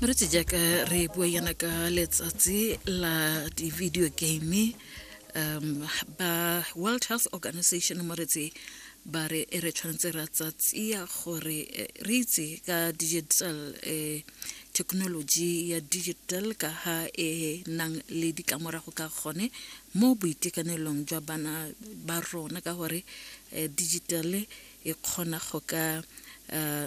re tse jaaka re bua yana ka letsatsi la di-video game um ba world health organization mo re tse ba re e re tshwanetse ra tsatsia gore eh, re itse ka digital um thekenoloji ya digital ka ha e nang le ditlamorago ka gone mo boitekanelong jwa bana ba rona ka gore um eh, digital e kgona go ka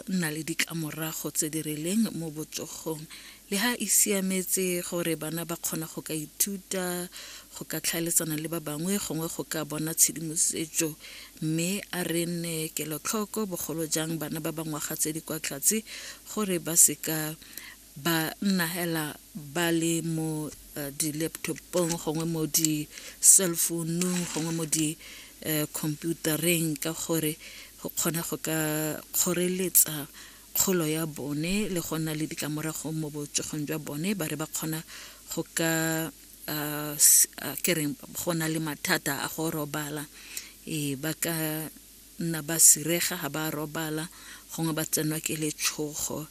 nna le ditlamorago tse di rileng mo botsogong le ha e siametse gore bana ba kgona go ka ithuta go ka tlhaeletsana le ba bangwe gongwe go ka bona tshedimosetso mme a re nne kelotlhoko bogolo jang bana ba bangwaga tse di kwa tlhatse gore ba seka ba nna hela ba le mo uh, di-laptopong gongwe mo di-cellphoneung gongwe mo di-computereng eh, ka gore go kgona go ka kgoreletsa kgolo ya bone le go nna le ditlamorago mo botsogong jwa bone ba re ba kgona go ka uh, uh, kereng go na le mathata a go robala e ba ka nna ba sirega ga ba robala gongwe ba tsenwa ke letshogo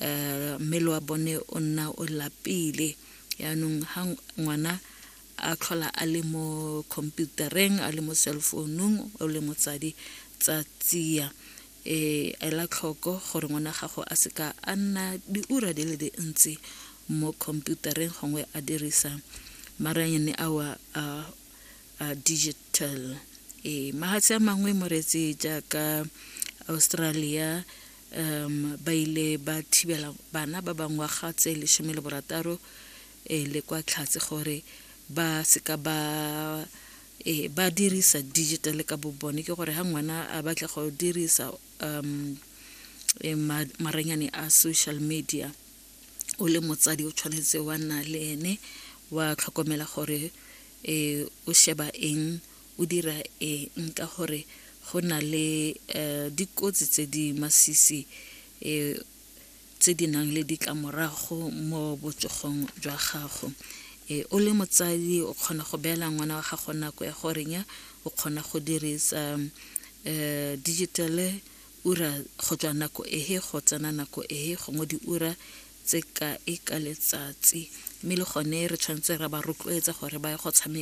um mmele wa bone o nna o lapile yaanong ga ngwana a tlhola a le mo computereng a le mo cellfounung o le motsadi tsa tsia e ela tlhoko gore ngwana gago a seka a nna diura di le dintsi mo computereng gongwe a dirisa maranyane ao a uh, digital e mahatshe a mangwe moreetse jaaka australia um ba ile ba thibela bana ba bangwaga tse lesome le borataro e le kwa tlhatse gore ba seka ba e ba dirisa digital ka bobone ke gore ha ngwana a batla go dirisa um e, ma- maranyane a social media o le motsadi o tshwanetse wa nna le ene wa tlhokomela gore e o sheba eng o dira eng ka gore go na le um dikotsi tse di masisi um tse di nang le ditlamorago mo botsogong jwa gago um o le motsadi o kgona go beela ngwana wa gago nako ya goreng ya o kgona go dirisa um digitale Ura go tswa nako ehe go tsena nako ehe gongwe diura tse kae ka letsatsi, mme le gone re tshwanetse ra ba rotloetsa gore ba ye go tshameka.